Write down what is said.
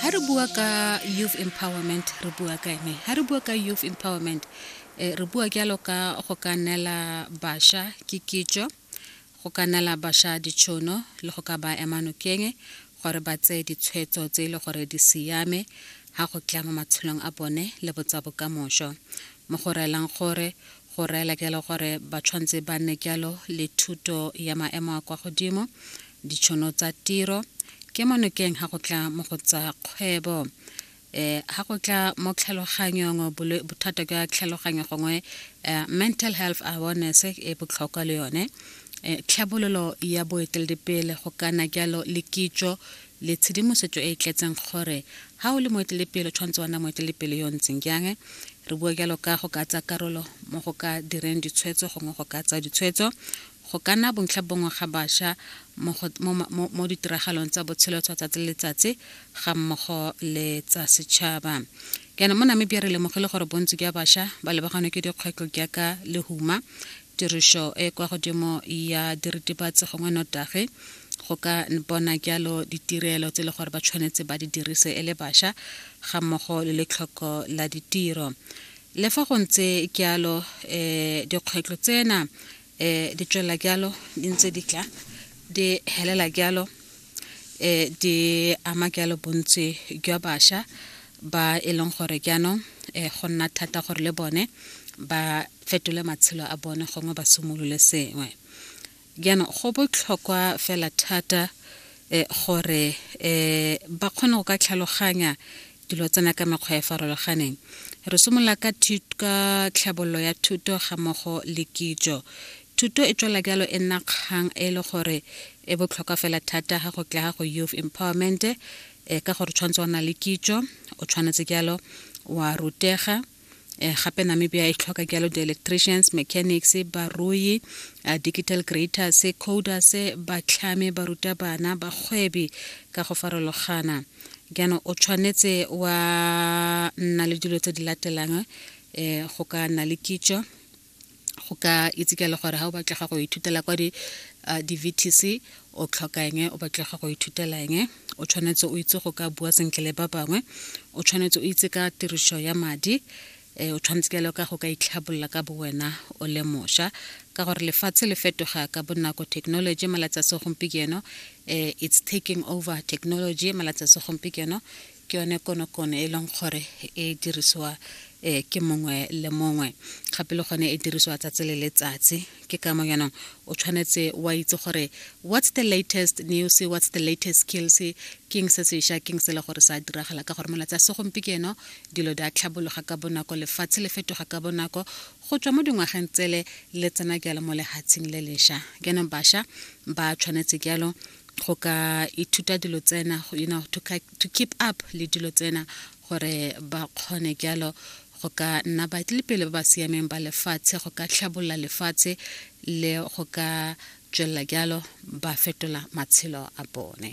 ha re bua ka youth empowerment re bua ka ene ha re bua ka youth empowerment eh, re bua jalo ka go ka neela bašwa ke kitso go ka neela bašwa ditšhono le go ka ba ema nokeng gore ba tseye ditshwetso tse e le gore di siame ga go tla mo matshelong a bone le botsa bokamošo mo go reelang gore go reela kelo gore ba tshwanetse ba nne jalo le thuto ya maemo a kwa godimo ditšhono tsa tiro ke mo nokeng ga go tla mo go tsa kgwebo um eh, ga go tla mo tlhaloganyong bothata jwa tlhaloganyo gongwe eh, mental health awareness e botlhokwa le yone eh, tlhabololo ya boeteledipele go kana jalo le kitso le tshedimosetso e e tletseng gore ha o le moetelepele o tshwanetse wa nna moetelepele yo o ntseng jang. Re bua jalo ka go ka tsaya karolo mo go ka direng ditshwetso gongwe go ka tsaya ditshwetso, go ka nna bontlha bongwe ga bašwa mo, mo, mo, mo ditiragalong tsa botshelo tsa tsatsi le letsatsi ga mmogo le tsa setšhaba. Jaanong mo Namibia re lemogile gore bontsi jwa bašwa ba lebaganwe ke dikgwetlho jaaka lehuma, tirišo e kwa godimo ya diritibatsi gongwe notagi go ka bona jalo ditirelo tse e le gore ba tshwanetse ba di dirise e le bašwa ga mmogo le letlhoko la ditiro le fa go ntse jalo um eh, dikgwetlho tsena um eh, di tswelela jalo di ntse di tla di helela jalo um di ama jalo bontsi jwa bašwa ba e leng gore jaanong um go nna thata gore le bone ba fetole matshelo a bone gongwe ba simolole sengwe jaanong go botlhokwa fela thata um gore um ba kgone go ka tlhaloganya dilo tsena ka mekgwa e farologaneng re simolola ka ka tlhabololo ya thuto ga mmogo le kitso thuto e tswela jalo e nna kgang e le gore e botlhokwa fela thata ga go tla ga go youth empowerment e ka gore tshwanetse wa na le kitso o tshwanetse jalo wa rutega eh, gape namibia e tlhoka jalo di-electricians mechanics barui uh, digital creators coders batlhame barutabana bagwebi ka go farologana jaanong o tshwanetse wa nna le dilo tse di latelang um go ka nna le kitso go ka itse ka le gore ga o batlega go ithutela kwa di-vtc uh, o tlhokang o batlega go ithutelang o tshwanetse o itse go ka bua sentle le ba bangwe o tshwanetse o itse ka tiriso ya madi um o tshwanetse ka le ka go ka itlhabolola ka bo wena o le mošwa ka gore lefatshe le fetoga ka bonako technology malatsi a segompieno um it's taking over technology malatsi a segompieno ke yone konokono e leng gore e dirisiwa um ke mongwe le mongwe gape le gone e dirisiwa tsatsi le letsatsi ke ka mo yanong o tshwanetse wa itse gore what's the latest news what's the latest skills keng se seša keng se le gore sa diragala ka gore molatsi a segompieno dilo di a tlhabologa ka bonako lefatshe le fetoga ka bonako go tswa mo dingwageng tsele le tsena jalo mo lehatsheng le lesha jaanong basha ba tshwanetse jalo go ka ithuta dilo tsena you know to, to keep up le dilo tsena gore ba kgone jalo go ka nna baetlelepele ba ba siameng ba lefatshe go ka tlhabolola lefatshe le go ka tswelela jalo ba fetola matshelo a bone